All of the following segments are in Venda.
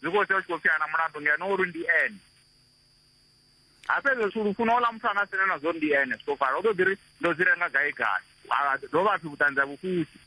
zwi khou sia u tshi khou pfiana mulandu ngeno uri ndi ene ha fhedza zwithu lufuno ola muthu anga sina na zwo ndi ene zwi khou fara u ḓo ḓi ri ndo dzi renga gai gai dovha pfi vhuṱanzi ha vhufusi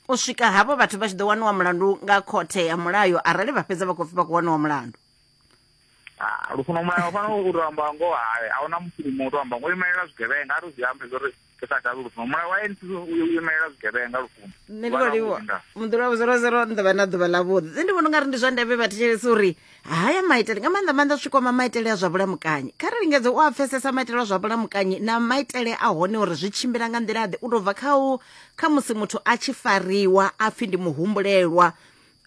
u swika havho vhathu vha tshi ḓo waniwa mulandu nga khothe ya mulayo arali vha fhedza vha khou pfi vha khou waniwa mulandu lufuno mulayo fanela u tou amba ngoho hae a huna musilimu u tou amba ngo imelela zwigevhenga a ri zwi ambe zwo ri ri sa kavhi lufuno mulayo wa anc u imelela zwigevhenga lufuno nṋe ndi khou livhuwa muḓula wa zero zero ni ḓovha na ḓuvha ḽa vhuḓi nṋe ndi vhona ungari ndi zwa ndeme vhathetshelesi uri haya maitele nga maanḓa maanḓa zwikwama maitele a zwa vhulamukanyi kha ri lingedze u a pfesesa maitele a zwa vhulamukanyi na maitele a hone uri zwi tshimbila nga nḓila ḓe u tou bva kha u kha musi muthu a tshi fariwa a pfhi ndi muhumbulelwa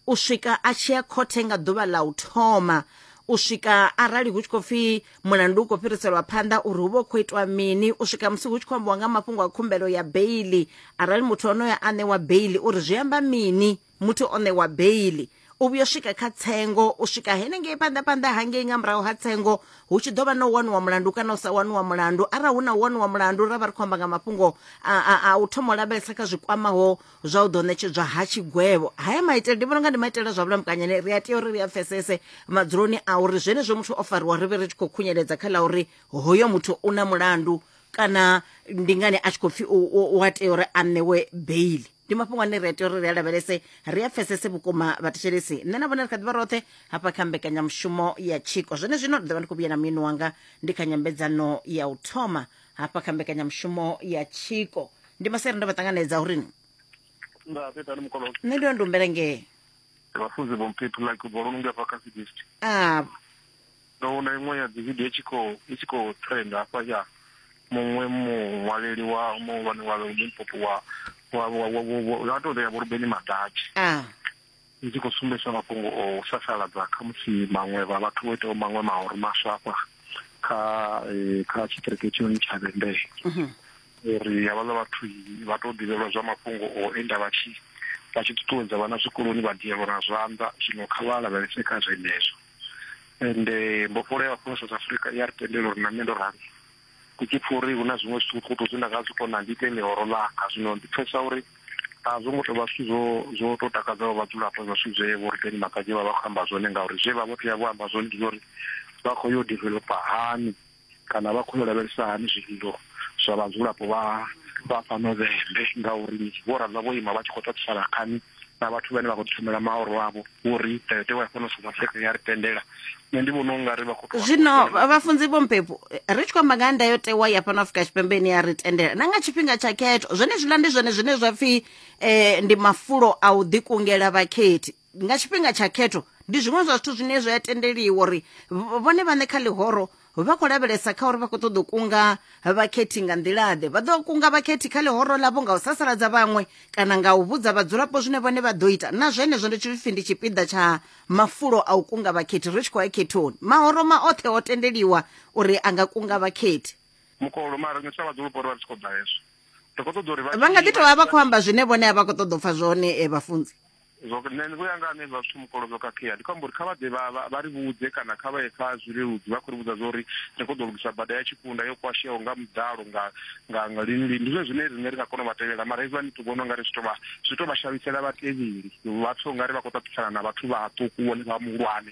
u swika a tshi ya khothe nga ḓuvha ḽa u thoma u swika arali hu tshi khou pfhi mulandu u khou fhiriselwa phanḓa uri hu vha hu khou itwa mini u swika musi hu tshi khou ambiwa nga mafhungo a khumbelo ya beili arali muthu onoyo a ṋewa beili uri zwi amba mini muthu o ṋewa beili u vhuya u swika kha tsengo u swika henengei phanḓa phanḓa hangei nga murahu ha tsengo hu tshi ḓo vha na u waniwa mulandu kana u sa waniwa mulandu arali hu na u waniwa mulandu ra vha ri khou amba nga mafhungo a u thoma u lavhelesa kha zwi kwamaho zwa u ḓo ṋetshedzwa ha tshigwevho haya maitele ndi vhona nga ndi maitele zwa vhulamukanyi ri a tea uri ri a pfesese madzuloni a uri zwenezwo muthu o fariwa ri vhe ri tshi khou khunyeledza kha ḽa uri hoyo muthu u na mulandu kana ndi ngani a tshi khou pfhi u a tea uri a ṋewe beili ndi mafhungo ane ri a tea uri ri a lavhelese ri a pfesese vhukuma vhathetshelesi nṋe na vhone ri kha ḓivha roṱhe hafha kha mbekanyamushumo ya tshiko zwone zwino ri ḓovha ndi khou vhuya na muini wanga ndi kha nyambedzano ya u thoma hafha kha mbekanyamushumo ya tshiko ndi masere ndo vha ṱanganedza uri nda fhetani mukololo nṋe ndo ndumbela ngee vhafunzi vho mphephi like bolo nonge hafha kha cdst a ndo vhona iṅwe ya dzividio i tshi khou i tshi khou trend hafha ya muṅwe muṅwaleli wa muhulwane wa limpopo wa wa wa wa- wa- wa- wa tou rea vho rubeni madatshi a i tshi khou sumbedzisa mafhungo o u sasaladza khamusi maṅwe vha vhathu vho itaho maṅwe mahoro maswa hafha kha kha tshiṱiriki hetshinoni tsha vhembee mhm. uri havhaḽa vhathu vha tou ḓivhelwa zwa mafhungo o enda vha tshi vha tshi ṱuṱuwedza vhana zwikoloni vha dielwa na zwanḓa zwino kha vha lavhelese kha zwenezwo ende mbofholo ya mapholisa south africa i a ri tendela uri na nṋe ndo rali ndi tshi pfha uri hu na zwiṅwe zwithukuṱhukuṱu zwine nda nga zwi kona ndi ite ḽihoro ḽanga zwino ndi pfhesesa uri a zwo ngo tou vha zwithu zwo zwo tou takadzaho vhadzulapo zwa zwithu zwe vho rikeni makadzi vha vha khou amba zwone ngauri zwe vha vho tea vho amba zwone ndi zwa uri vha khou yo developa hani kana vha khou yo lavhelesa hani zwililo zwa vhadzulapo vha vha fhano vhembe ngauri vho ramba vho ima vha tshi khou tatisana khani na vhathu vhane vha khou thomela maoro avho uri ndayotewa ya fhano south africa ya ri tendela nṋe ndi vhona unga ri vha khou zwino vhafunzi vho mpepo ri tshi khou amba nga ndayotewa ya fhano afrika tshipembe ine ya ri tendela na nga tshifhinga tsha khetho zwenezwiḽa ndi zwone zwine zwa pfhi um ndi mafulo a u ḓikungela vhakhethi nga tshifhinga tsha khetho ndi zwiṅwe zwa zwithu zwine zwa tendeliwa uri vhone vhaṋe kha ḽihoro vha khou lavhelesa kha uri vha khou ṱoḓa u kunga vhakhethi nga nḓilaḓe vha ḓo kunga vhakhethi kha ḽihoro ḽavho nga u sasaladza vhaṅwe kana nga u vhudza vhadzulapo zwine vhone vha ḓo ita na zwenezwo ndi tshipfi ndi tshipiḓa tsha mafulo a u kunga vhakhethi ri tshi khou ya khethoni mahoro ma oṱhe o tendeliwa uri a nga kunga vhakhethi mukolo mara riṋe sa vhadzulapo ri vha ri tshi khou ḓa hezwo ri khou ṱoḓa uri vha nga ḓi tovha vha khou amba zwine vhone a vha khou ṱoḓa u pfha zwone eh, vhafunzi Zwo, nṋe vhuya nga nṋe zwa zwithu mukolo zwo khakhea ndi khou amba uri kha vha ḓe vha vha vha ri vhudze kana kha vha ye kha zwileludzi vha khou ri vhudza zwa uri ri khou ḓo lugisa bada ya tshikunda yo kwasheaho nga muḓalo nga nga nga lini lini ndi zwone zwine riṋe ri nga kona u vha tevhela mara hezwiḽani ndi to vhona ungari zwi to vha zwi to vha shavhisela vhatevheli vha pfhe ungari vha khou ṱaṱisana na vhathu vhaṱuku vhone vha muhulwane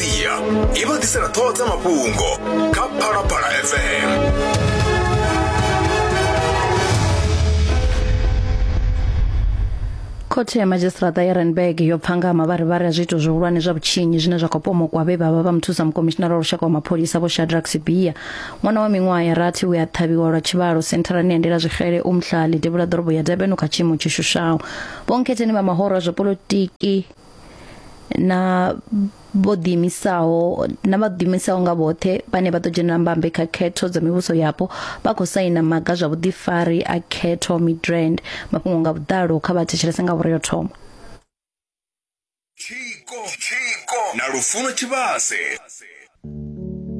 sia i vha ḓisela ṱhoho dza mafhungo kha phalaphala fm khothe ya madzhisiṱiraṱa ya renberg yo pfa nga mavharivhari a zwiito zwihulwane zwa vhutshinyi zwine zwa khou pomokwa vhe vha vha vha muthusa mukomishinara wa lushaka wa mapholisa vho shadrack sibia ṅwana wa miṅwaha ya rathi we a ṱhavhiwa lwa tshivhalo sentharani ya ndela zwixele umhlali devhula ḓorobo ya durban kha tshiimo tshi shushaho vhonkhetheni vha mahoro a zwa polotiki na vho ḓiimisaho na vha ḓiimisaho nga vhoṱhe vhane vha ḓo dzhenela mbambe kha khetho dza mivhuso yapo vha khou saina maga zwa vhuḓifari a khetho midrand mafhungo nga vhuḓalo kha vha thetshelese nga vhore yo thoma tshiko tshiko na lufuno tshivhase